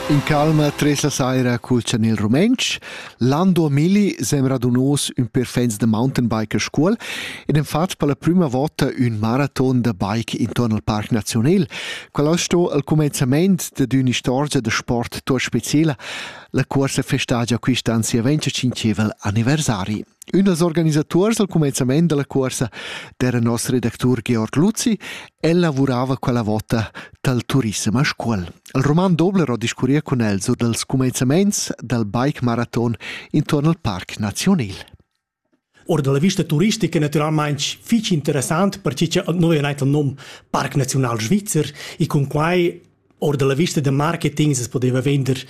In calma tres la saira cul chanel rumentsch. Lando Milli sembra dunos ün per fans da mountainbiker Scuol ed han fat per la prüma vota ün maraton da bike intorn al Parc Nazionel. Quel as sto al cumenzament dad ün'istorgia da sport tuot speciela. La cuorsa festagia quist'an sia 25 aniversari. Ünas organisatuors al cumenzament da la cuorsa d'eira nos redactur Georg Luzi. El lavurava quella vota dal turissem a Scuol. Il roman Dobler ho discurria cun el sur dals cumenzamaints dal bike maraton intuorn al Parc Nazionil. Ora da la vista turistica naturalmaing fich interessant perche cha nouv è gnit il nom Parc Naziunal Svizzer e cun quai Or dalla vista da marketing se podeva vender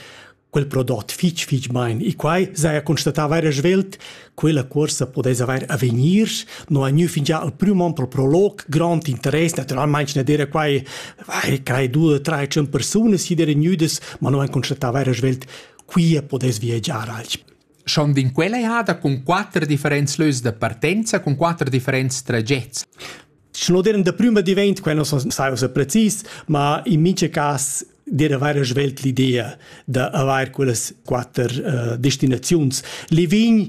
quel prodot fitg fitg bein e quai saja constatava era svelt quella cuorsa podess haver avegnir no ha gnü fingià al prüm on pel prolog grond interess naturalmaing ne dera quai vai quai due tre tschun persunas chi dera gnüdas ma no han constatava era svelt quia podess viagiar alch Schon din quella ehada cun quatter differents lös da partenza, cun quatter differents tragets. Schnoderem da prüma divent, quai non sai ussa precis, ma in mincha cas dir avair svelt l'idea da avair quellas quatter uh, destinaziuns. Livign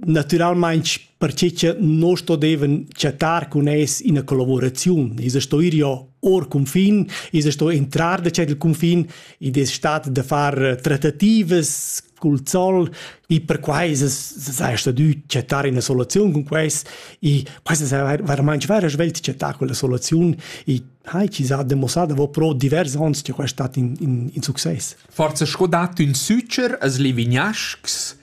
naturalmente perché che non sto deven chattar con es in collaborazione. Is sto ir io or confin, is sto entrar da c'è il confin, id es stat da far trattativas cul zol e perquai sai stadü chattar ina soluziun cun quest e questa è veramente vera svelt chattà quella soluziun e hai chi s'ha demossada vo pro divers ons che questa stat in, in, in success. Forza sco dat ün sücher as Livignaschs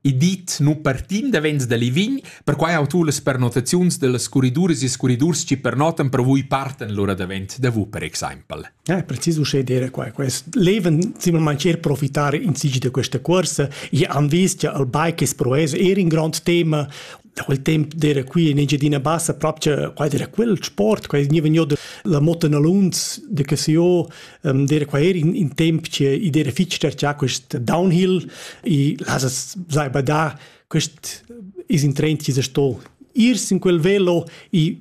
e dit nu partim davents da Livign, perquai ho tu las pernotaziuns dellas curriduras e curridurs chi pernotan per vui partan lura davent da vu per exaimpel. Eh, precis uschè dire qua. Quest leven simplesmente per profittare in sig di questa corsa. Io han visto che il bike è proes era un grande tema. Da quel tempo dire qui in Engiadina Bassa proprio qua dire quel sport, qua ni vegno la moto nalunz de che se io dire qua era in, in tempo che i dire fixer già quest downhill e las sai badà quest is in trend che sto irsi in quel velo e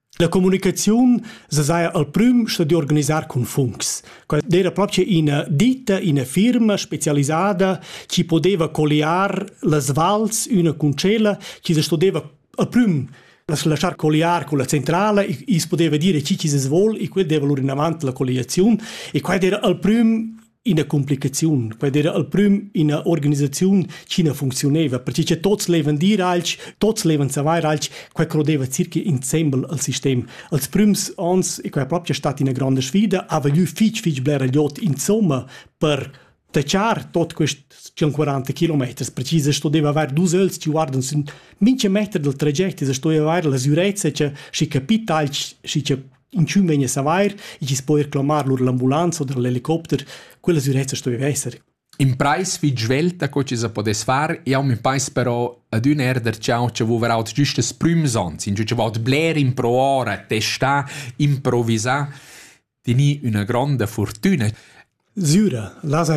La communicaziun sesaja al prüm sta di organisar cun funcs. Quella era proprio ina ditta, ina firma specialisada che poteva colliar las vals una con cella, che se stodeva al prüm lasciar colliar con la centrale e e poteva dire chi chi se svol e quel deva lur in avant la colliazione e quella era al prüm ina complicaziun. Quei era al prim ina organisaziun ch'ina funcziuneva, perché che tots levan dir alch, tots levan savair alch, quei crodeva circa insembel al sistem. Als prims ans, e quei proprio è stata una grande sfida, ha vegnu fitch fitch blera iot insomma per tachar tot quest 140 kilometers. Precise sto deve aver dus öls ci guardan sün mincha meter del tragect, e sto avair la sicurezza che si capita alch, si che inchün vegn a savair e chi's po eir clamar lur l'ambulanza oder l'helicopter, quella sürezza sto esser. In preis fich svelta co chi sa podess far, jau mi pais però ad ün erder ciao che vouver aut giust das prüms ans, in che vaut bler improar a testar, improvisar, teni üna gronda fortüna. Süra, las